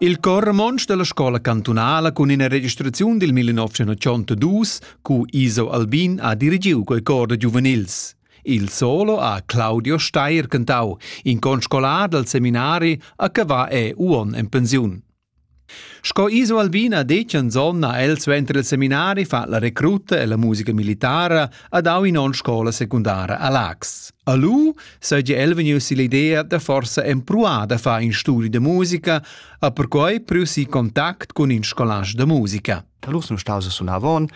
Il cor romontsch dalla scola cantunala cun ina registraziun dil 1982 cu Iso Albin ha dirigiu quei cor da giuvenils. Il solo ha Claudio Steyer cantau, in conscolar dal seminari a Cavà e Uon en pensiun. Sco Iso Albina detg anzon ha el suenter il seminari fa la recruta e la musica militara ad au in on scola secundara a Lax. A lu seigi el vegnius l'idea da forsa empruar da far in studi da musica, a perquei priu si contact cun in scolage da musica. Allura sun staus a sunar avon.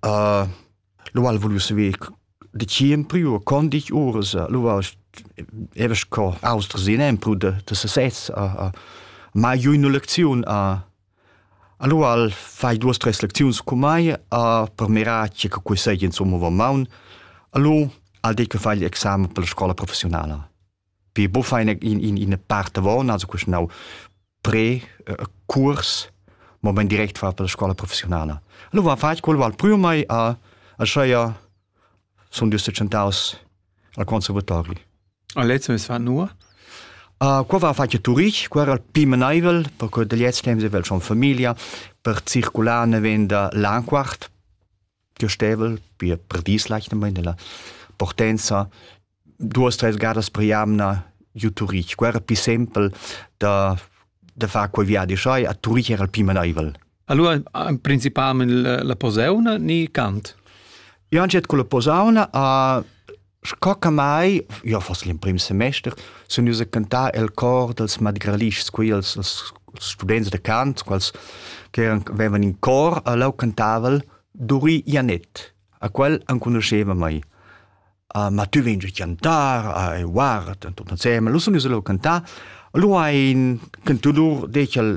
Uh, Lu ha'l vuliu saver dacheu empriu e con ditg uras. Lu varst evas co austers in empru da da sesez a a mai giu üna lecziun a Allo al fai duos tres lecziuns cun mai a per mirar tge che quei seigi insomma va maun. Allo al det che fai l'examen per la scola professionala. Pi bufa ina, ina part avon, also quest nau pre uh, curs, moment direct far per la scola professionala. Allora fatg quel val prima mai a a scheia sun dus tschentaus al conservatori. A lezzo es va nur? Uh, qua va fatg turich, qua era pi menaivel, perché da gliez temps evel schon familia, per circular ne venda l'anquart, gestevel per per dis leichter mal nella portenza duas tres gadas per jamna giu Turich quera pi sempel da da far quei viadi schai a Turich era il pi maneivel Allora principalmente la posauna ni Kant? Ja, anche con la posauna a Sco che mai, io foss l'emprim semester, sun ius a cantar el cor dels madralischs, quei els, els students de cant, quals che avevan in cor, a lau cantaval Duri Ianet, a quel enconuscheva mai. Uh, ma tu vegn chantar, uh, e guarda, tot insemmel, lu sun ius a lau cantar, lu ein cantudur dec al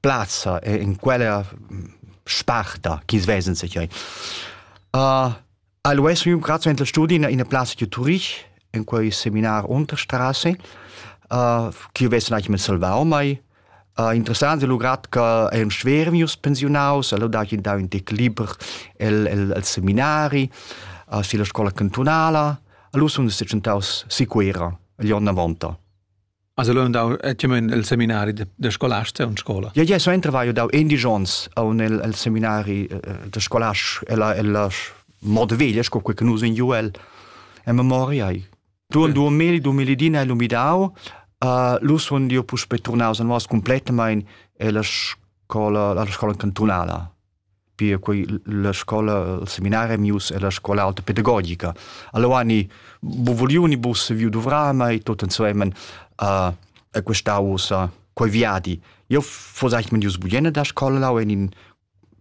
plazza e in quella sparta chi svesen se chiai. Uh, Allo es un grazie in studi in una plaza di Turich in quel seminar Unterstraße uh, chi vessen eigentlich mit salvar mai Uh, interessant è lugrat che è un schwer mius pensionaus, allora da che da un tec liber il, il, il seminari, uh, sulla scuola cantonala, allora sono sicuntaus sicura, gli anni 90. Has lu andau tiamen el seminari da, da scolasta en scola? Ja, ja, suenter vai dau endisch onns aun el, el seminari eh, da scolast ella ella moda veglia sco quel che nus in ju el en memoria ai. Du 2000-2010 hai lumidau, uh, lu sun io puspe turnaus a nos completamain ella scola, alla scola cantunala. pia quei la scola il seminari mius e la scola alta pedagogica. Allora ni bu vuliuni bus saviu dovrar mai tot insemen uh, e questa usa quei viadi. Io fos eigentlich mit jus buiene da scola lau in in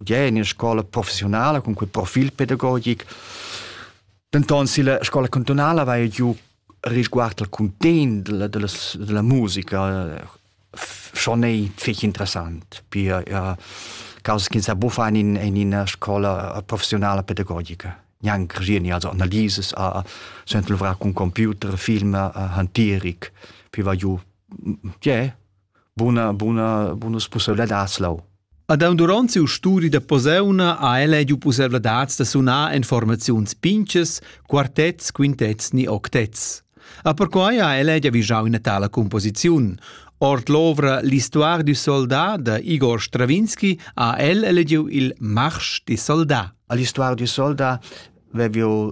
ja in scola professionale con quel profil pedagogic. Denton si la scola cantonale va giù risguardo al content della, della, della musica schon ei fich interessant pia ja, causa che sa buffan in, in ina scola professionale pedagogica gnanc regieni also analises a sent luvrar con computer film hantieric piva giu je buna buna bonus possibilidad lau Ad aun duront siu studi da posauna ha el ediu pusseivladads da sunar en formaziuns pintgas, quartets, quintets ni octets. A perquai ha el edia vigiau ina tala composiziun. Ord l'ovra L'histoire du soldat da Igor Stravinski ha el elegiu il Marsch di soldat. L'histoire du soldat veviu